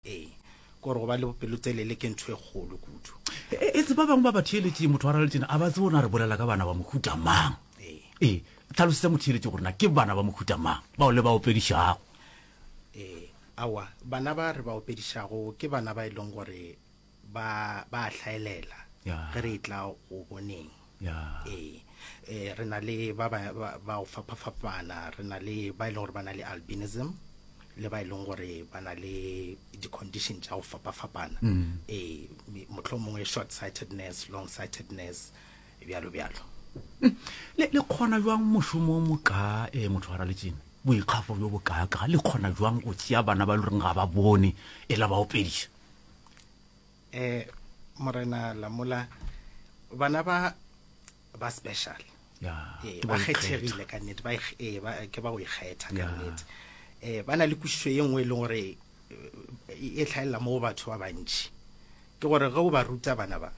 Ee, kore go ba le bopelotelele ke ntho e kgolo kudu. E, e tse ba bangwe ba ba theeletšeng motho wa raletšena a ba tsebo na re bolela ka bana ba mohuta mang. Ee. Ee, tlhalosetsa motheeletši gore na ke bana ba mohuta mang bao le ba opedišago. Ee, aowa, bana ba re ba opedišago ke bana ba e leng gore ba ba a hlaelela Ya. ge re tla go boneng ya ee eh, re na le ba ba ba- ba go fapafapana re na le ba e leng gore ba na le albinism le ba e leng gore ba na le di-condition tša go fapafapana ee me- mohlho mongwe short sightedness long sightedness bjalo bjalo le le kgona jwang mošomo o mokaa um motho wa raletšene boikgafo bjo bokaakaa le kgona jwang go tšea bana ba e le goreng ga ba bone e la ba opediša eh morena lamola bana ba ba special Yeah, Eh, ke ba ba ikgetha. kgethegile ka nnete ba ikg- eh, ba- ke ba go ikgetha ka Yeah. nnete um ba na le kwešišo ye nngwe e leng gore eh, e tlhaelela mo go batho ba bantši ke gore ge o ba ruta bana ba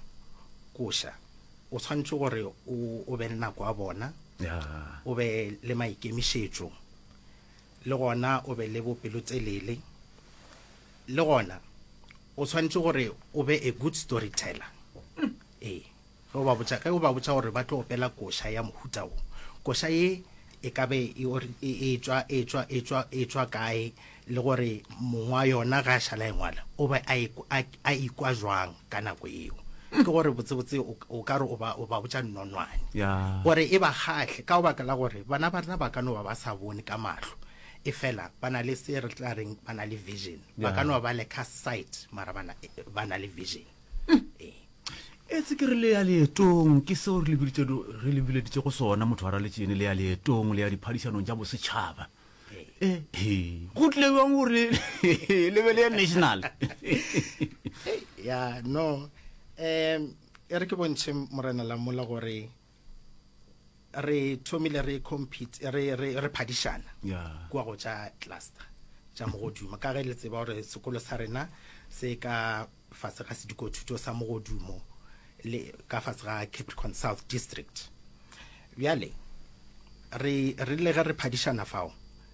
koša o tshwanetse gore o o be le nako ya bona Yeah. o be le maikemišetšo le gona o be le bopelotelele Le gona o swanetše gore o be a good storyteller. Ee, ge o ba botša ge o ba botša gore ba tlo opela koša ya mohuta wo, koša ye e ka be e or- e e tšwa e tšwa e tšwa e tšwa kae le gore mong wa yona ge a šala e ngwala o be a e- a a ikwa jwang ka nako yeo. Ke gore botsebotse o ka- o ka re o ba o ba botša nonwane Ya. gore e ba kgahle ka go baka la gore bana ba rena ba ka no ba ba sa bone ka mahlo efela ba na le se re tla reng ba na le vision ba ka no ba le ka sight mara ba na- ba na le vision Ee. etse ke re le ya leetong ke seo re le biditše do- re le bileditše go sona motho wa raletšene le ya leetong le ya diphadišanong tša bosetšhaba Eh, he, go tlile bjang gore le be le ya national ya no um e re ke bontšhe morena lamola gore re thomile re compete re re re phadišana yeah. kwa go tša cluster tša mogodumo ka ge le tseba gore sekolo sa rena se ka fase ga sedikothuto sa mogodumo le ka fase ga capricorn south district bjale re rile ge re phadišana fao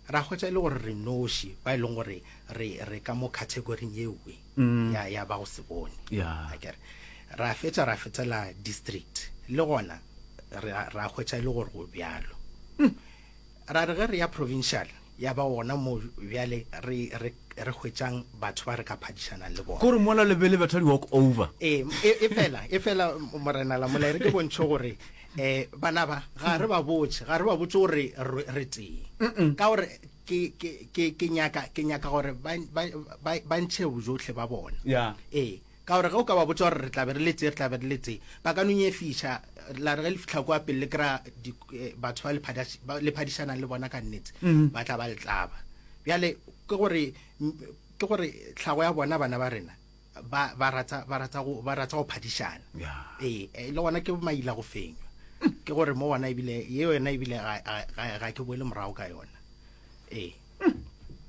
Ra hwetša e le gore re noši ba e leng gore re re ka mo categoring yewe mm. ya ya ba go se bone yeah. akere ra fetša ra fetela district le gona ra hwetša e le gore go bjalo mm. ra re ge re ya provincial ya ba gona mo bjale re re re hwetšang batho ba re ka phadišanang le bona gore mola lebele batho di walk over e, e, e fela e fela morena la molaere ke bontšho gore um bana ba ga re ba botse ga re ba botse gore re tee ka gore ke nyaka ke nyaka gore ba ntšhe bojotlhe ba bona ee ka gore ge o ka ba botsa gore re tlabe re letse re tlabe re letse ba ka nonye fiša la re ge le fitlha kwa pele le kry-a eh, batho ba le phadišanang le bona ka nnetse mm-hmm. ba tla ba letlaba bjale ke gore ke gore tlhago ya bona bana ba rena ba ba rata ba rata go ba rata go phadišana Yeah. ee eh, le gona ke maila go fenywa ke gore mo gona ebile ye yona ebile ga- ga ga- ga ke boele morago ka yona ee